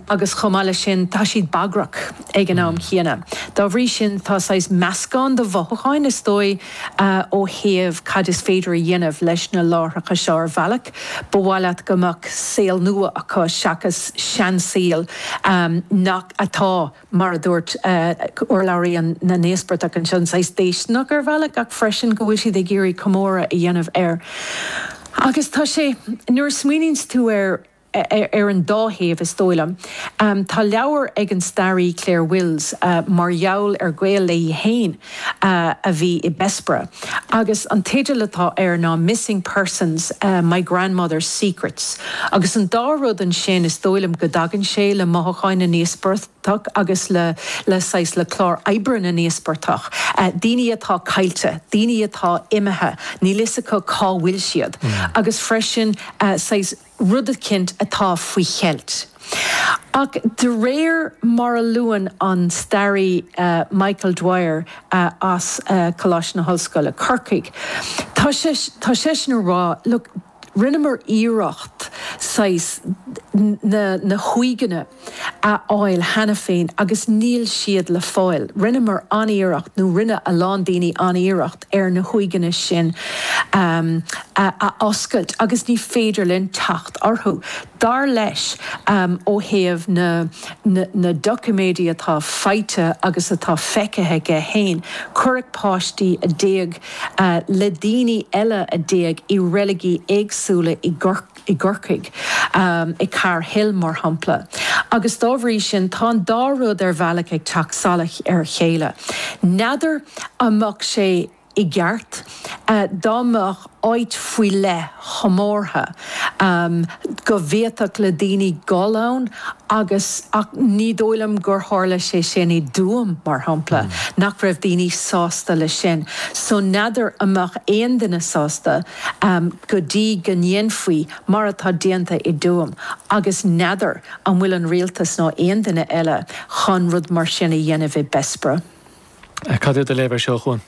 agus chomh maith leis sin, tá siad bagarthach ag an am chéanna. Dá bhrí sin, tá saghas meascán de mhothúcháin, is dóigh, ó thaobh cad is féidir a dhéanamh leis na láithreacha seo ar bhealach. Ba mhaith leat go mbeadh saol nua acu seachas seansaol nach, atá, mar a dúirt urlabhraí na n-íospartach anseo, saghas déisteanach ar bhealach ach freisin go bhfuil siad ag iarraidh comóradh a dhéanamh air. Agus tá sé, nuair a smaoiníonns tú air, ar an dá thaobh, is dóigh liom. Tá leabhar ag an staraí Clare Wills mar gheall ar gaol léi héin a bhí i Bessborough agus an teideal atá air ná Missing Persons, My Grandmother's Secrets. Agus an dá rud ansin, is dóigh liom go dtagann sé le mothucháin na n-íospartach agus le saghas, le clár oibre na n-íospartach. Daoine atá caillte, daoine atá imithe, níl fhios acu cá bhfuil siad agus freisin saghas, rud eicínt atá faoi cheilt. Ach de réir mar a luann an staraí Michael Dwyer as Coláiste na hOllscoile, Corcaigh, tá, tá seisean ag rá, look, rinneamar iarracht saghas ar na huaigheanna, a fháil cheana féin agus níl siad le fáil. Rinneamar an-iarracht, nó rinne a lán daoine an-iarracht ar na huaigheanna sin a oscailt agus ní féidir linn teacht orthu. Dar leis, ó thaobh na, na doiciméidí atá faighte agus atá feicthe aige héin, cuireadh páistí a d'éag le daoine eile a d'éag i reiligí éagsúla i i gCorcaigh, i Carr's Hill, mar shampla, agus dá bhrí sin tá an dá rud ar bhealach ag teacht salach ar a chéile. N'fheadar an mbeadh sé i gceart dá mbeadh áit faoi leith chomórtha go bhféadfadh le daoine gul ann agus ach ní dóigh liom gur tharla sé sin i dTuaim, mar shampla, nach raibh daoine sásta leis sin. So n'fheadar an mbeadh aon duine sásta. go dtí go ndéanfaí mar atá déanta i dTuaim, agus n'fheadar an bhfuil an Rialtas nó aon duine eile chun rud mar sin a dhéanamh i Bessborough. Cad é do léamh air seo, a Chuain?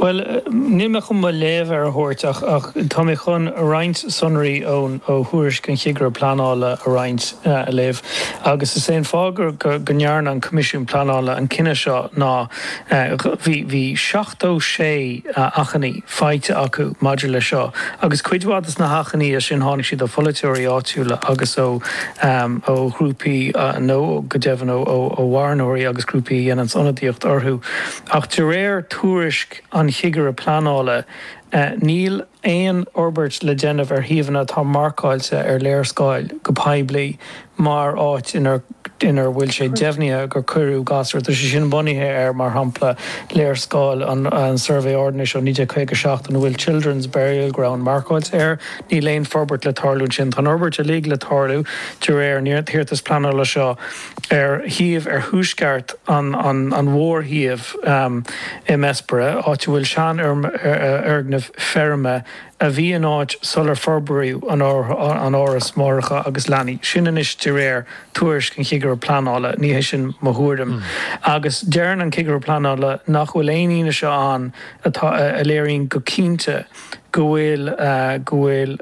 Bhuel, níl mé chun mo léamh air a thabhairt ach, ach tá mé chun roinnt sonraí ó thuairisc an Chigire Pleanála a roinnt, a léamh. Agus is é an fáth go ndearna an Coimisiún Pleanála an cinneadh seo ná bhí sé achainí faighte acu maidir leis seo agus cuid mhaith de na hachainí sin tháinig siad ó pholaiteoirí áitiúla agus ó, ó ghrúpaí nó go deimhin ó mharthanóirí agus grúpaí a dhéananns ionadaíocht orthu ach de réir tuairisc an Chigire Pleanála níl aon fhorbairt le déanamh ar shuíomhanna atá marcáilte ar léarscáil go poiblí mar áit inar bhfuil sé deimhnithe gur cuireadh gasúir, tá sé sin bunaithe ar, mar shampla, léarscáil an tSuirbhé Ordanais ó 1956 ina bhfuil 'Children's Burial Ground' marcáilte air. Níl aon forbairt le tarlú ansin. Tá an fhorbairt uilig le tarlú de réir an iarratas pleanála seo. ar shuíomh ar thuaisceart an mhórshuímh i mBessborough, áit a bhfuil seanfhoirgneamh feirme a bhí in áit sular forbraíodh an Áras Máithreacha agus Leanaí sin anois de réir tuairisc an Chigire Pleanála, ní hé sin mo thuairim, agus deireann an Cigire Pleanála nach bhfuil aon fhianaise ann atá a léiríonn go cinnte go bhfuil go bhfuil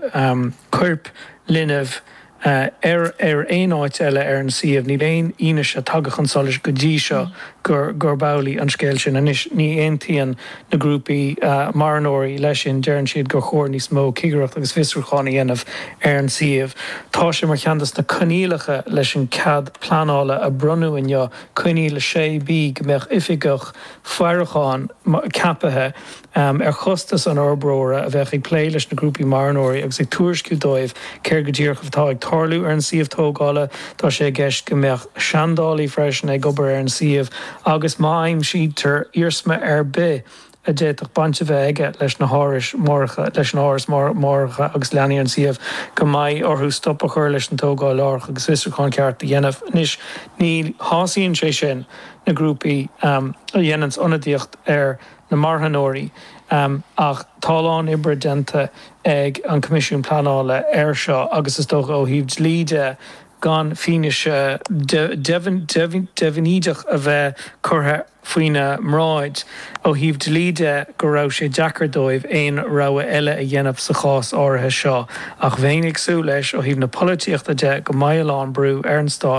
coirp linbh. ar ar aon áit eile ar an suíomh. Níl aon fhianaise tagtha chun solais go dtí seo gurb amhlaidh an scéal. Sin, anois, ní aontaíonn na grúpaí marthanóirí leis sin, deireann siad gur chóir níos mó cigireacht agus fiosrúchán a dhéanamh ar an suíomh. Tá sé mar cheann de na coinníollacha leis an cead pleanála a bronnadh inniu, Coinníoll 6B, go mbeadh oifigeach faireacháin ceapaithe am ar chostas an fhorbróra, a bheadh ag plé leis na grúpaí marthanóirí agus ag tuairisciú dóibh céard go díreach atá ag tarlú ar an suíomh tógála. Tá sé i gceist go mbeadh seandálaí freisin ag obair ar an suíomh agus má aimsítear iarsma ar bith a d'fhéadfadh baint a bheith aige leis na hárais máithreacha, leis an áras máithreacha agus leanaí ar an suíomh, go mbeidh orthu stop a chur leis an tógáil láithreach agus fiosrúchán ceart a dhéanamh. Anois, ní shásaíonn sé sin na grúpaí a dhéananns ionadaíocht ar. na marthanóirí, ach tá a lán oibre déanta ag an Coimisiún Pleanála air seo agus is dócha, ó thaobh dlí de, gan fianaise deifnídeach a bheith curtha faoina mbráid ó thaobh dlí de, go raibh sé deacair dóibh aon rogha eile a dhéanamh sa chás áirithe seo. Ach bheinn ag súil leis, ó thaobh na polaitíochta de, go mbeidh a lán brú ar an Stát,